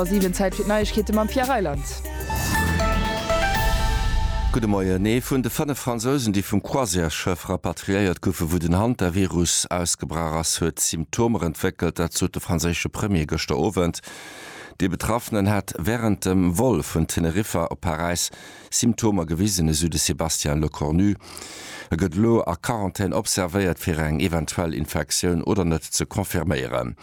Ass eben Zäit fir d'Neiegkeete mam Pierre Reyland. Gudde Moien. Ee vun de fënnef Fransousen, déi vum Croisièresschëff rapatriéiert goufen, wou den Hantavirus ausgebrach ass, huet Symptomer entwéckelt. Dat sot de franséische Premier gëschter Owend. Dee Betraffenen hat wärend dem Vol vun Teneriffa op Paräis Symptomer gewisen, esou de Sébastien Lecornu. E gëtt elo a Quarantän observéiert, fir eng eventuell Infektioun oder net ze confirméieren.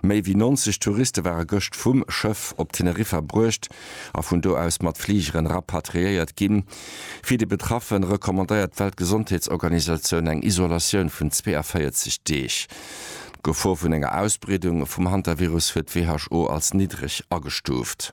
Méi wéi 90 Touriste ware gëscht vum Schëff op Teneriffa bruecht a vun do aus mat Fligeren rapatriéiert ginn. Fir déi Betraffe recommandéiert d'Weltgesondheetsorganisatioun eng Isolatioun vun 42 Deeg. D'Gefor vun enger Ausbreedung vum Hantavirus huet d'WHO als niddreg agestuuft.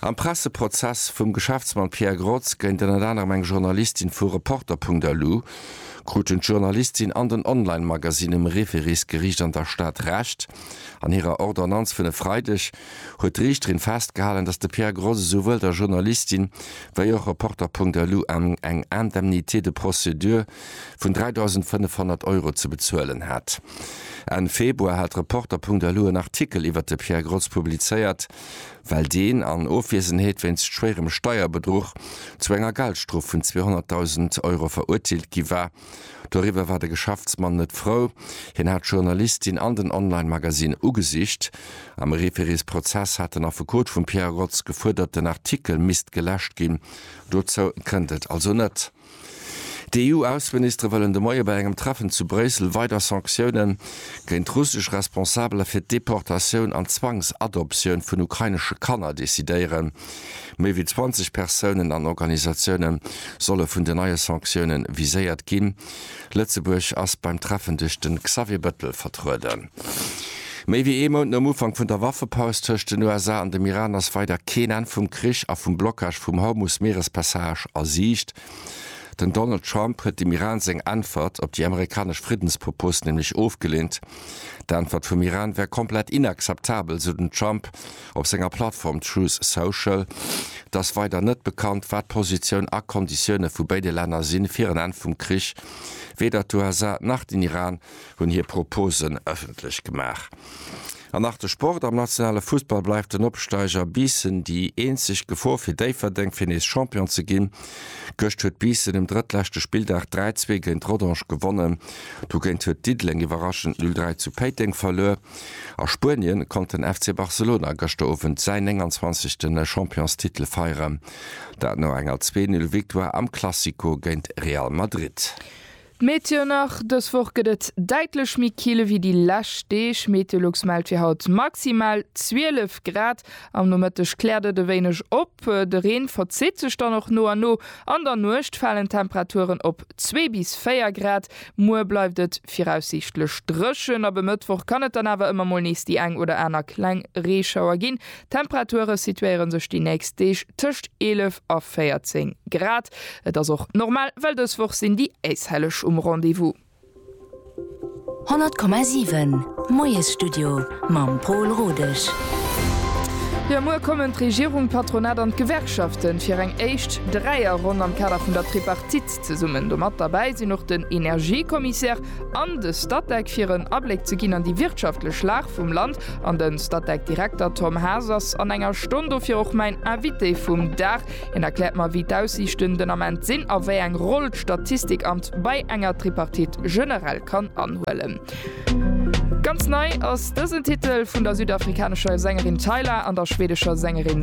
Am Presseprozess vum Geschäftsmann Pierre Grotz géint ënnert anerem eng Journalistin vu Reporter.lu kruten d'Journalistin an den Online-Magasinn um Referisgeriicht an der Stad Recht. An hirer Ordonnanz vun e Freideg huet d'Riichterin festgehalen, datt de Pierre Grotz esouwuel der Journalistin wéi och Reporter.lu eng Indemnité de procédure, vun 3.500 Euro ze bezuelen hat. Enn Februar hat Reporter.lu en Artikel iwwert de Pierre Grotz publizéiert, well deen an Ofwiesenheet wéinst schwéierem Steierbedruch zu enger Geldstrof vun 200.000 Euro verurteelt gi war. Doriwwer war de Geschäftsmann net frou, hien hat d'Journalistin an den Online-Magazin ugesicht. Am Refereesprozess hat den Affekot vum Pierre Grotz gefuerdert, den Artikel misst geläscht ginn. Dozou kënnt et also net. D'EU-Ausseministere wëllen de Moie bei engem Treffen zu Bréissel weider Sanktioune géint russesch Responsabeler fir d'Deportatioun an d'Zwangsadoptioun vun ukrainesche Kanner decidéieren. Méi wéi 20 Persounen an Organisatioune solle vun den neie Sanktioune viséiert ginn. Lëtzebuerg ass beim Treffen duerch de Xavier Bëttel vertrueden. Méi wéi ee Mount nom Ufank vun der Waffepaus tëscht den USA an dem Iran ass weider keen Enn vum Krich a vum Blockage vum Hormus-Meerespassage a Siicht. Den Donald Trump huet dem Iran seng Äntwert op déi amerikanesch Friddenspropos nämlech ofgeleent. D'Äntwert vum Iran wär komplett inakzeptabel, sou den Trump. Op senger Plattform Truth Social, Et ass weider net bekannt, wat d'Positioun a Konditioune vu béide Länner sinn, fir en Enn vum Krich. Weder d'USA nach den Iran hunn hir Proposen ëffentlech gemaach. An nach de Sport, Am nationale Fussball bleift den Opsteiger Biissen déi eenzeg Gefor fir Déifferdeng, fir nees Champion ze ginn. Gëscht huet Biissen um drëttleschte Spilldag 3, 2 géint Rodange gewonnen. Dogéint huet Diddeleng iwwerraschend 0, 3 zu Péiteng verluer. A Spuenien konnt den FC Barcelona gëschter Owend säin 29. Championstitel feieren. Dat no enger zwee Null Victoire am Classico géint Real Madrid. D'Meteo nach, Dës Woch gëtt et däitlech méi kill ewéi déi lescht Deeg. Meteolux mellt fir haut maximal 12 Grad. Am Nomëtteg kläert et e wéineg op, de Reen verzitt sech dann och no a no. An der Nuecht falen d'Temperaturen op 2 bis 4 Grad. Muer bleift et viraussiichtlech dréchen, ab e Mëttwoch kann et dann awer ëmmer mol nees déi eng oder aner kleng Reeschauer ginn. D'Temperature situéiere sech déi nächst Deeg tëscht 11 a 14 Grad. Et ass och normal, well dës Woch sinn déi Äishelleg um Rendez-vous. 100,7 Moiesstudio mam Pol Rodesch. Jo, muer kommen d'Regierung, d'Patronat an d'Gewerkschaften fir eng éischt Dräierronn am Kader vun der Tripartite. Zesummen domat derbäi sinn och den Energiekommissär an de Statec, fir en Abléck ze ginn an déi wirtschaftlech Lag vum Land. An den Statec-Direkter Tom Haas ass an enger Stonn dofir och mäin Invité vum Dag. Hien erkläert mer, wéi d'Aussiichten den Ament sinn a wéi eng Roll d'Statistikamt bei enger Tripartite generell kann anhuelen. Ganz nei ass dësen Titel vun der südafrikanescher Sängerin Tyla an der schweedescher Sängerin